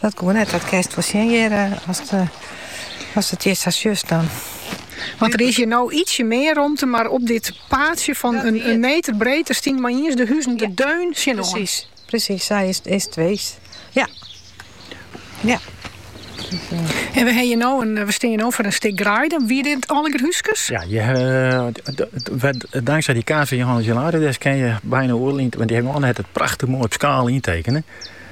Dat koe net, dat kinst wol sjen hjir as it hjir sa sjochst dan. Want der is hjir no ietsje mear romte, mar op dit paadsje fan in meter breed, der stienen mei-iens de huzen der deun tsjinoan. Presys, presys, sa is it weest. Ja. Ja. En we hawwe no in, we stean no foar in stik greide. Wie dit alleger húskes? Ja, je, uh, dankzij dy kaart fan Johannes Hilarides kin je byna oerlien, want dy hebben it prachtich moai op skaal yntekene.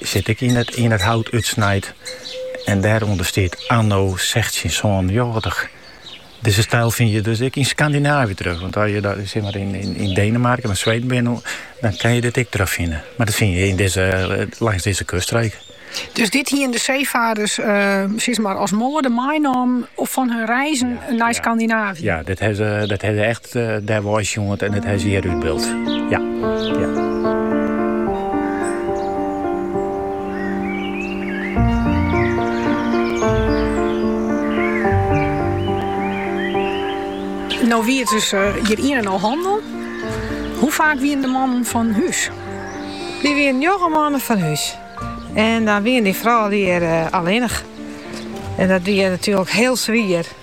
Sit ek yn it hout útsnijd en dêrûnder stiet anno sechstjinhûndertsânenfjirtich. Dizze styl fyn je dus ek yn Skandinaavje terug, want as je yn Denemarken of Sweden binne, dan kinne je dit ek terugfine. Mar dat fyn je langs dizze kuststreek. Dus dit hiene de seefaarders as moade meinommen fan hun reizen nei Skandinaavje? Ja, dat ha se echt Dêrwei ek sjoen en it hjir wer útbyld. Ja, ja. No wie it dus hjir ien en al handel. Hoe faak wienen de mannen fan hús? Dy wienen njoggen moannen fan hús. En dan wiene dy froulju hjir allinnich. En dat wie natuerlik hiel swier.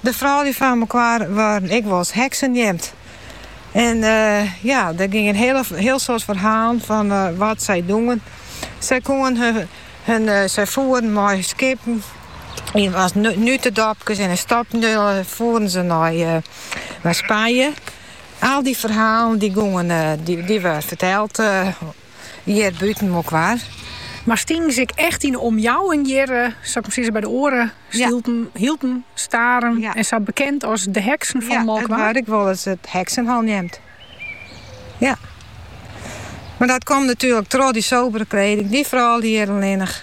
De froulju fan Molkwar waarden ek wolris heksen neamd. En ja, der gingen hiel soad ferhalen fan wat sy dogen. Sy koenen hun, sy foeren mei skippen yn as nutedopkes en in stopnulle foeren se nei Spanje. Al dy ferhalen dy gûngen, dy wurde ferteld. Hjir bûten Molkwar. Mar stingen se ek echt yn 'e omjouwing hjir, sa ik mar sizze, by de oare stêden, Hylpen, Starum en sa, bekend as de heksen fan Molkwar? Ja, it waard ek wolris it heksenhol neamd. Ja. Mar dat komt natuerlik troch dy sobere kleding, dy froulju hjir allinnich